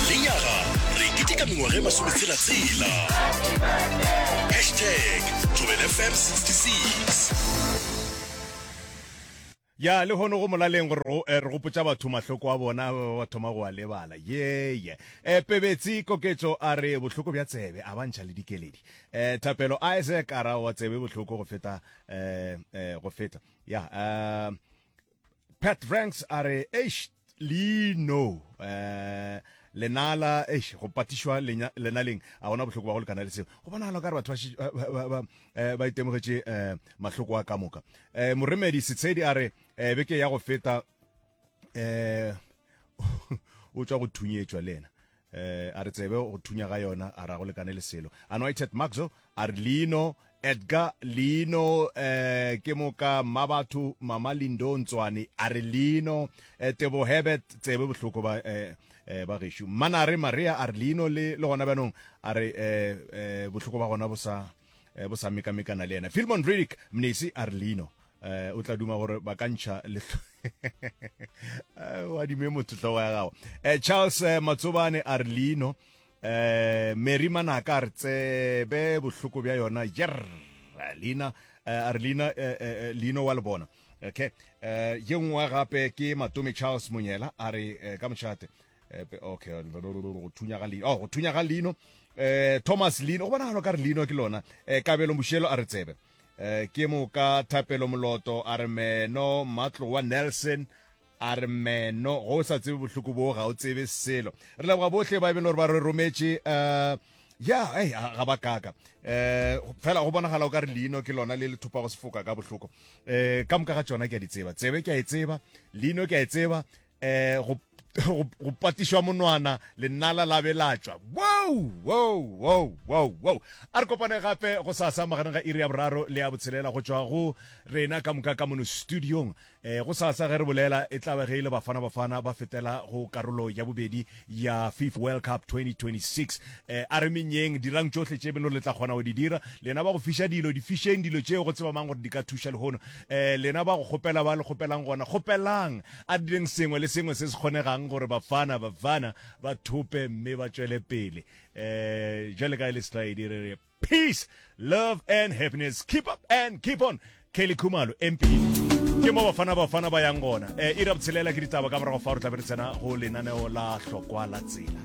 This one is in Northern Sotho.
Lenyaga re keteka mengwaga e masometshela-tshela. Hashtag Thobelfm 66. Ya lehono go molaleng gore go eh, re gopotsa batho mahloko a bona ba ba thoma go a lebala yeye eh, pebetsi koketso a re bohloko bja tsebe a bantšha le dikeledi eh, thapelo isaac a ra wa tsebe bohloko go feta eh, eh, go feta ya eh, Pat Franks a re eish leino eh lenala eish go patišwa lenaleng a gona bohloko ba go lekana le seo go bonagala ka re batho ba eh, itemogetše eh, mahloko a ka moka eh, moremedi setshedi a re beke ya go feta eh o tswa go thunyetšwa le ena Eh, a re tsebe go thunya ga yona a ra go lekane le selo anointed maxo a re leino edgar leino eh, ke moka mma batho mama lindo ntswane a re leino eh, tebo hebet tsebe bohloko ba eh, eh, ba gešo mmanare maria a re leino le, le gona bjanong a re eh, eh, bohloko ba gona bo sa eh, bo sa mekamekana le ena filmon ridic mnesi a re leino eh, o tla duma gore ba ka ntšha letlho eh, wa dime motho tlhogo ya gago eh, charles eh, matsobane a re leino eh, mary manaka a re tsebe bohloko bja yona jer leina eh, a re leina eh, eh, eh leino wa le bona okay eh, ye nngwe gape ke matome charles monyela a re eh, ka mošate epe okay go thunya ga leino oh go thunya ga leino eh Thomas Lino go bona galo ka re Lino ke lona eh kabelo moshelo a re tsebe eh ke mo ka thapelo moloto a re meno matlo wa Nelson a re meno go sa tsebe bohloko bo ga o tsebe selo re leboga bohle ba e beng le gore ba re rometše eh ya hey, ga ba kaka eh fela go bonagala o ka re leino ke lona le le thopa go sefoka ka bohloko eh ka moka ga tsona ke a di tseba tsebe ke a e tseba leino ke a e tseba um go, go, go patišwa monwana lenala la be la tšwa wow wow wow wow wow a re kopane gape go sasa magareng ga iri ya boraro le ya botshelela go tšwa go rena ka moka ka mono studiong um go sasa ge re bolela e tlabe ge e le bafana bafana ba fetela go karolo ya bobedi ya Fifa World Cup 2026. E, a re menyeng, dirang tšohle tše beno le tla kgona go di dira. Lena ba go fiša dilo, di fišeng dilo tšeo go tseba mang gore di ka thuša lehono. E, lena ba go kgopela ba le kgopelang gona, kgopelang. A re direng sengwe le sengwe se se kgonegang gore Bafana Bafana ba thope mme ba tšwele pele. E, jwale ka e le slide e re re. Peace, love and happiness. Keep up and keep on. Kelly Khumalo, MP. ke mo bafana bafana ba yang gona um eh, ira botshelela ke ditaba ka morago fa re tlabe re tsena go lenaneo la hlokwa la tsela